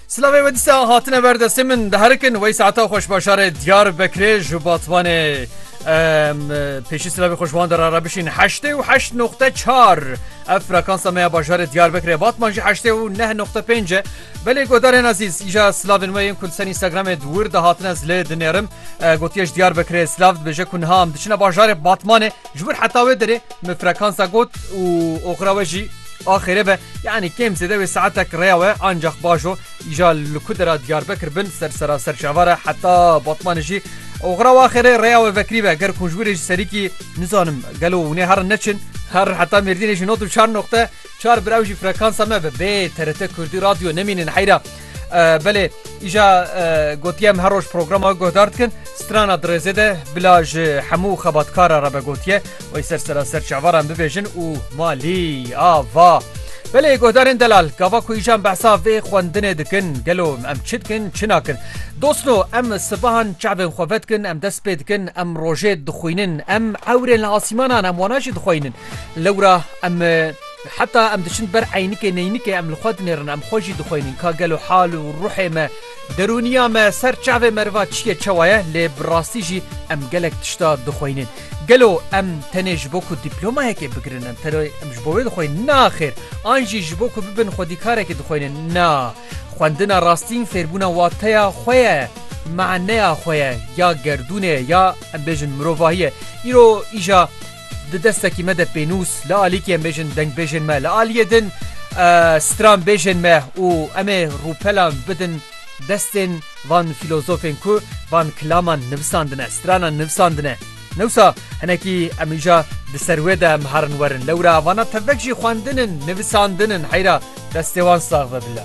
Silavê ve dîsa hatine ver destê min diherikin wey saeta xweş başarê diyar bekirê ji batvanê pêşî silavê xweşvan dera re bişîn heştê û heşt noxte çar ev frekansa me ya bajarê diyar bekirê batman jî heştê û neh noxte pênc e belê godarên azîz îja silavên we yên ku ser Instagramê wir de hatine zilê dinêrim gotiyeş diyar bekirê silav dibêje ku niha em diçine bajarê batmanê Ji wir heta wê derê min frekansa got û oxira we jî axêrê be yanî kêm zêde wê saetek rêya we ancax baş o îja li ku dera Diyarbekir bin ser seraser çavar e heta Batmanê jî oxira we axêrê rêya we vekirî be ger ku ji wir ê ji serîkî nizanim gelo hûnê herin neçin her heta Mêrdînê jî nod û çar noqte çar bi ew jî frekansa me be bê TRT Kurdî Radyo nemînin heyra. Belê îja gotiye em her roj programa guhdar dikin strana dirêzê de bila ji hemû xebatkara re be gotiye wey ser seraser çavaran bibêjin û malî ava. Belê guhdarên delal gava ku îjan behsa vê xwendinê dikin gelo em çi dikin çi nakin. Dosno em sibahan çavên xwe vedikin em dest pê dikin em rojê dixwînin em ewrên li asîmanan em wana jî dixweynin. Lewra em Heta em diçin ber eynikê neynikê em li xwe dinêrin, em xwe jî dixwînin ka gelo hal û ruhê me, derûniya me, ser çavê meriva çi ye çawa ye, lê bi rastî jî em gelek tişta dixwînin. Gelo em tenê ji bo ku dîplomayekê bigirin em tenê em ji bo wê dixwînin? Na xêr! An jî ji bo ku bibin xwedîkarekî dixwînin? Na! Xwendina rastîn fêrbûna wateya xwe ye, maneya xwe ye, ya gerdûnê ye, ya em bêjin mirovahî ye. Îro îja. Di destekî me de pênûs li alîkî em bêjin dengbêjên me li aliyê din stranbêjên me û em ê rûpelan bidin destên van fîlozofên ku van kilaman nivisandine, stranan nivisandine. Newsa hinekî em îja di ser wê de em herin werin. Lewra vana tevek jî xwendin in, nivisandin in. Heyra destê wan sax be bila.